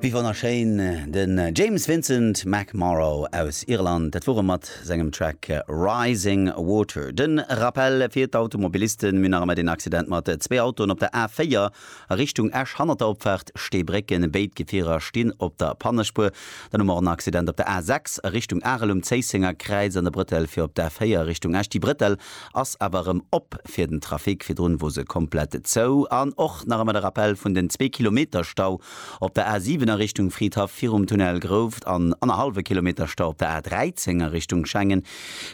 Wéi wonnerschéin, den James Vincent McMorrow aus Irland, dat wor e mat sengem Track Rising Water. Den Rappel fir d'Automobilisten, mir nach ëmmer den Accident mat zwee Autoen op der A4 a Richtung Esch hannert der Opfaart Steebrécken, béid Gefierer stinn op der Pannespuer. Dann hu mer och en Accident op der A6 a Richtung Arel um Zéissenger Kräiz an der Brëttel fir op d'A4 Richtung Esch. Déi Brëttel ass awer erëm op fir den Trafic, virdrun wor se komplett zou, an och nach ëmmer de Rappell vun den zwee Kilometer Stau op der A 7 a Richtung Fridhaff virum Tunnel Grouft an annerhallwe Kilometer Stau op der A 13 a Richtung Schengen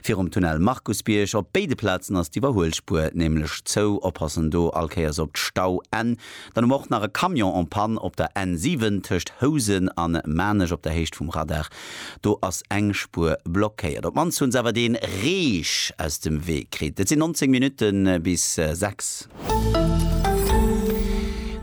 virum Tunnel Markusbierg. Op béide Plazen ass d'Iwwerhuelspuer nämlech zou, oppassen do all Kéiers op d'Stauenn. Dann hu mer och nach e Camion en panne op der N 7 tëscht Housen a Maarnech op der Héicht vum Radar. Do ass eng Spuer blockéiert. Op d'mannst hu se awer dee Reech aus dem Wee kritt. Et sinn 19 Minutte bis 6.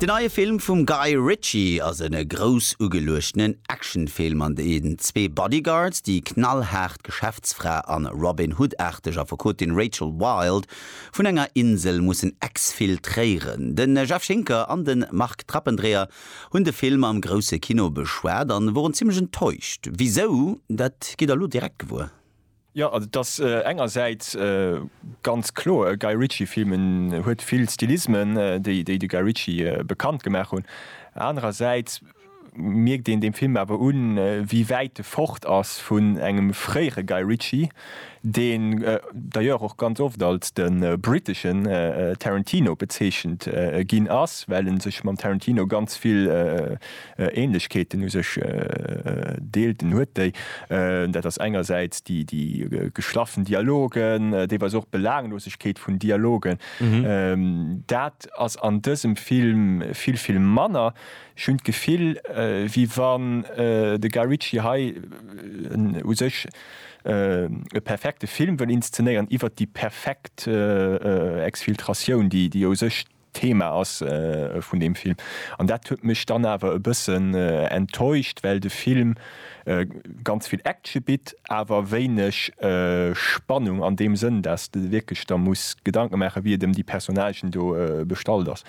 Den neie Film vum Guy Ritchie ass e grouss ugeluechtenen Actionfilm, an deem zwee Bodyguards, déi knallhaart Geschäftsfra an Robin Hood-aarteg Affekotin Rachel Wilde, Vun enger Insel mussen exfiltréieren. De Jeff Schinker an de Marc Trappendreher hunn de Film am grousse Kino beschwat a woren zimmlech enttäuscht. Wisou, dat gitt der elo direkt gewuer. Jo, also et ass engersäits ganz kloer e Guy Ritchie-Film. En huet vill Stilismen, déi de Guy Ritchie bekannt gemaach hunn. Anerersäits mierkt een dem Film awer un, wéi wäit e fort ass vun engem fréiere Guy Ritchie, deen d'ailleurs och ganz oft als de briteschen Tarantino bezeechent ginn ass, well e sech mam Tarantino ganz vill Ähnlechkeeten u sech deelt. En huet déi, dat ass engersäits déi geschlaffen Dialogen, deelweis och d'Belaanglosegkeet vun Dialogen. Dat ass an dësem Film vill, vill manner. Ech hunn d'Gefill, wéi wann de Guy Ritchie hei en u sech e perfekte Film wëll inszenéieren iwwert déi perfekt Exfiltratioun, déi jo u sech d'Thema ass vun deem Film. An dat huet mech dann awer e bëssen enttäuscht, well de Film ganz vill Action bitt, awer wéineg Spannung an deem Sënn, dass de wierklech der muss Gedanke maachen, wéi et ëm déi Personnagen do bestallt ass.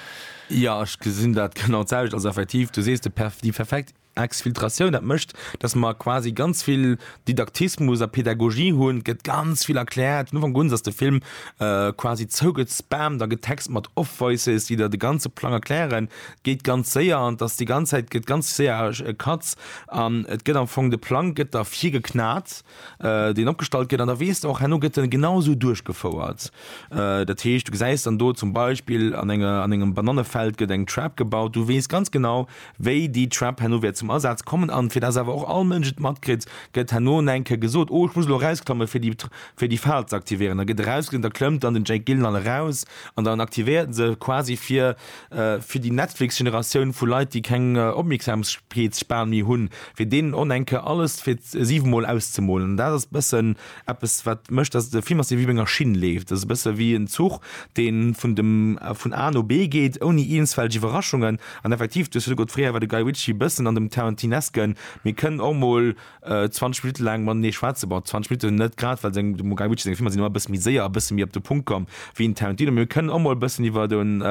Jo, ech gesinn dat genau d'selwecht. Also effektiv, du sees, déi perfekt Exfiltratioun, dat mécht, datt mer quasi ganz vill Didaktismus a Pedagogie hunn. Et gëtt ganz vill erkläert. Vun Ufank un ass de Film quasi zougespammt a getext mat Off-Voices, déi der de ganze Plang erklären. Et geet ganz séier an et ass déi ganz Zäit, gëtt ganz séier Cuts an et gëtt am Fong, de Plang gëtt der virgeknat. deen opgestallt gëtt, an da weess de och, herno gëtt en genau esou duerchgefouert. Dat heescht, du gesäis dann do zum Beispill an enger, an engem Banannefeld gëtt eng Trap gebaut, du weess ganz genau, wéi déi Trap herno wäert zum Asaz kommen. An fir dass awer och all Mënsch et matkritt, gëtt herno en enke gesot, Oh, ech muss elo erausklammen, fir déi, fir déi Fal ze aktivéieren. Da gëtt erausgeklammt, da klëmmt dann den Jake Gyllenhaal eraus an dann aktivéiert en se quasi fir, Fir déi Netflix-Generatioun vu Leit, déi keng Opmierksamkeetsspan méi hunn, fir deenen on enke alles fir siwe Mol auszemolen. An dat ass e bëssen eppes, wat mécht, dass de Film ass, dee wéi op enger Schinn leeft. Dat ass e bësse wéi en Zuch, dee vun dem, vun A no B geet, ouni eenzfälleg Iwwerraschungen. An effektiv, du hues virdru gesot, fréier war de Guy Ritchie e bëssen an dem Tarantinesken, mee kënn och emol 20 Minutte laang matenee schwätzen, bon 20 Minutten net grad, well seng, dem Guy Ritchie seng Filmer sinn ëmmer e bësse méi séier a bësse méi op de Punkt komm wéi en Tarantino. Mee mir kënnen och mol e bëssen iwwer den,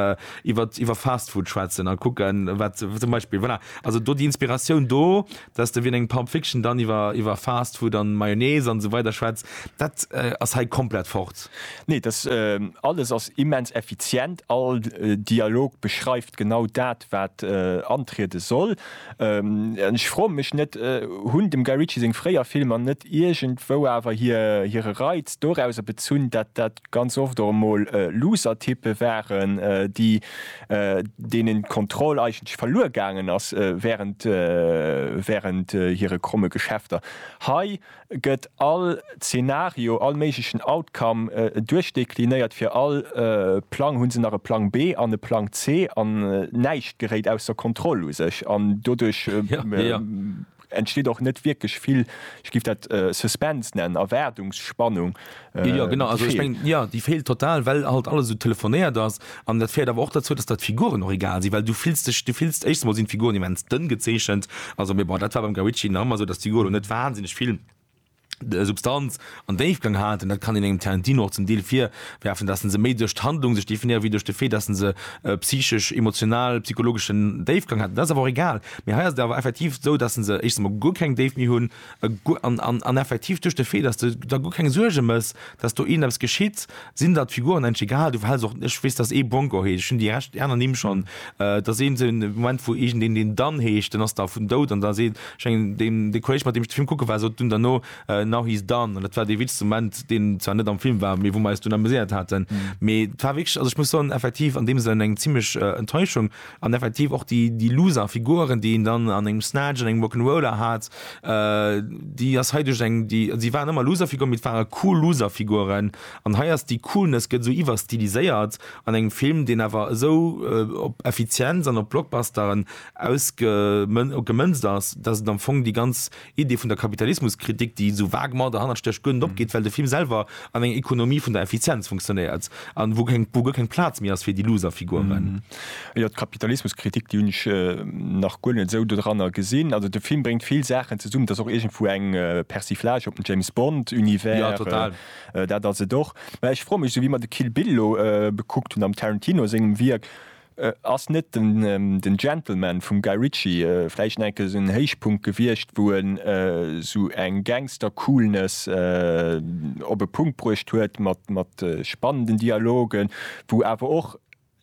iwwer, iwwer Fast Food schwätzen a kucken, wat zum Beispill, voilà, also do déi Inspiratioun do, dass de wéi an engem Pulp Fiction dann iwwer, iwwer Fast Food an Mayonnaise an esou weider schwätzt, dat ass hei komplett fort. Nee, dass alles ass immens effizient, all Dialog beschreift genau dat, wat antriede soll. Ech froen mech net, hunn dem Guy Ritchie seng fréier Filmer net iergendwou awer hire Reiz dorauser bezunn, dat dat ganz oft och emol Loser-Typpe waren, déi deenen d'Kontroll eigentlech verluer gaangen ass wärend wärend hire kromme Geschäfter? Hei gëtt all Zeenario, all méiglechen Outcome duerchdeklinéiert, fir all Plang hu se nach e Plang B an e Plang C an näischt geréit ausser Kontroll u sech an doduerch entsteet och net wierklech vill, ech giff dat Suspense nennen, Erwaardungsspannung, Äh, ja, genau also, ich mein, ja, die fehlt total well halt alles so telefonéiert ass an dat fährt aber auch dazu dass dat Figuren noch egal sie weil du filst dich du filst echt mal sind Figuren die mens dënn gezeechchent also mir war dat war beim Gawici Nammer so dass die Golo net wahnsinnig viel de äh, Substanz an Déifgang hat en dat kann in engem Tarantino och zum Deel fir werfen, dat se méi duerch d'Handlung sech definieren wéi duerch de Fee, dat se äh, psychesch, emotional, psychologeschen Déifgang hat. Dat awer egal. Mir heiers awer effektiv sou, dat se eich guer keng Déif mi hunn. An effektiv, duerch de Fait, dass de der guer keng Suerge mëss, dass do iergend eppes geschitt, sinn der d'Figuren endlech egal. Du behälls och, ech weess, dass ee Bronco heescht, ech hunn déi Rescht, déi aner Nimm schonn, dass ee sou en Moment, wou iergend een deen Dan heescht, den ass da vun dout, an da seet, ech mengen deen, dee Kolleg, mat deem ech de Film kucke war, sot dunn derno, Now he's Dan. An dat war dee witschste Moment, deen zwar net am Film war, mee wou mer eis dunn amuséiert haten. Mee et war wierklech, also ech muss soen, effektiv an deem Sënn eng zimlech Enttäuschung, An effektiv och déi, déi Loser Figuren, déi een dann an engem Snatch, an engem Rock'n'Roller hat, déi ass hei duerch eng, déi, si waren ëmmer Loser Figuren, mee et ware cool Loser Figuren. An hei ass déi Coolness, gëtt esou iwwerstiliséiert an engem Film, deen awer esou op Effizienz an op Blockbusteren ausge, gemënzt ass, dass et am Fong déi ganz Idee vun der Kapitalismuskritik, déi esou vague mat der Hannersteg guer net opgeet, well de Film selwer an enger Ekonomie vun der Effizienz funktionéiert a wou keng, wou guer keng Plaz méi ass fir déi looser Figuren. Jo, d'Kapitalismuskritik, déi hunn ech nach guer net esou dodranner gesinn. Also de Film bréngt vill Saachen zesummen. Et ass och iergendwou eng Persiflage op den James Bond Univers. Jo, total. Dat ass et och. Mä ech froe mech esou, wéi mer de Kill Bill elo bekuckt hunn am Tarantino sengem Wierk, Ass net den Gentleman vum Guy Ritchie vläicht enke esou en Héichpunkt gewiescht, wou en esou eng Gangster-Coolness op e Punkt bruecht huet mat spannenden Dialogen, wou awer och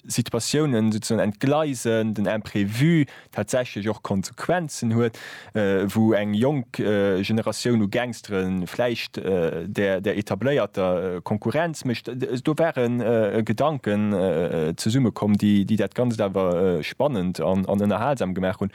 Situatiounen souzesoen entgleisen, den Imprévu, tatsächlech och Konsequenzen huet, wou eng jonk Generatioun u Gangstere vläicht der etabléierter Konkurrenz mécht. Do ware Gedanken zesumme komm, déi dat Ganzt awer spannend an ënnerhalsam gemaach hunn.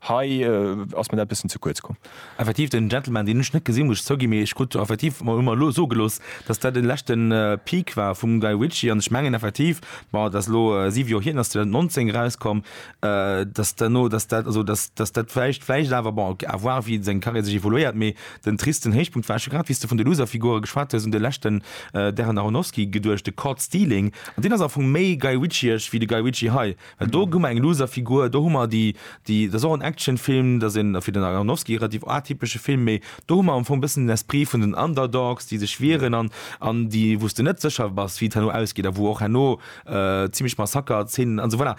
Hei ass mir dat e bëssen ze kuerz komm. Effektiv, den Gentleman, deen ech net gesinn, muss ech zouginn, mee ech krut effektiv hu mer elo soe gelooss, datt dat de leschte Peak war vum Guy Ritchie an ech mengen effektiv, bon, dat ass elo siwe Joer hier, den ass 2019 erauskomm, dass duerno dass dat also dass dass dat vläicht vläicht awer bon à voir wéi seng Carrière sech évoluéiert mee den tristen Héichpunkt war scho grad wéi s de vun de Loserfigure geschwat hues un de leschten Darren Aronofsky geduecht de Caught Stealing an deen ass am Fong méi Guy Ritchieesch wéi de Guy Ritchie hei well do hu mer eng Loserfigur do hu mer déi déi dat ass och en Actionfilm dat ass een fir den Aronofsky relativ atypesche Film mee do hu mer am Fong e bëssen den Esprit vun den Underdogs déi sech wieren an an déi wou s de net sécher bass wéi et herno ausgeet a wou och herno zimmlech Massaker Zeenen an esou voilà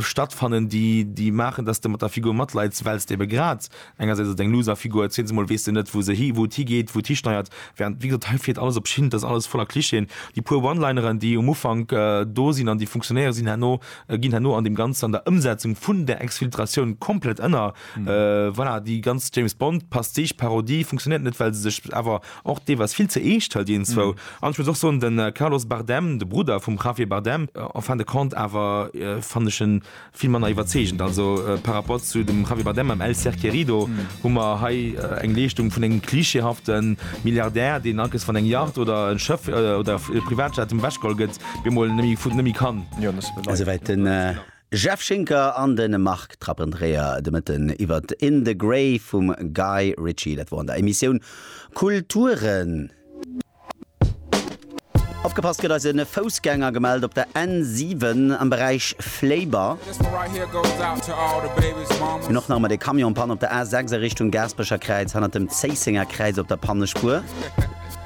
stattfannen déi déi maachen dass de mat der Figur matleits wells de ebe grad engersäits ass et eng Loser Figur zweetens emol weess de net wou se hi wou et higeet wou et histeiert während wéi gesot hei fiert alles op Schinn et ass alles voller Clichéen déi puer One-Lineren déi um Ufank do sinn an déi funktionéiere sinn herno ginn herno an deem Ganzen an der Ëmsetzung vun der Exfiltratioun komplett ënner voilà déi ganz James Bond Pastiche Parodie funktionéiert net well se sech awer Och dee war vill ze eescht, hëlt een zou. An ech muss och soen, de Carlos Bardem, de Brudder vum Javier Bardem, en fin de compte, awer fannen ech e vill manner iwwerzeegend. Also par rapport zu dem Javier Bardem am El ser querido hu mer hei eng Leeschtung vun engem klischeehafte Milliardär, deen alkes wann eng Yacht oder e Schëff oder e Privatjet ëm ewechgeholl gëtt, bemol net méi kann. Esouwäit den Jeff Schinker an de Marc Trappendreher de Mëtten iwwert In the Grey vum Guy Ritchie. Dat wor an der Emissioun Kulturen. Opgepasst gëtt eis e Foussgänger gemellt op der N7 am Beräich Fléiber. Mir hunn och nach emol ee Camion Panne op der A6 a Richtung Gaasperecher Kräiz hanner dem Zéissenger Kräiz op der Pannespuer.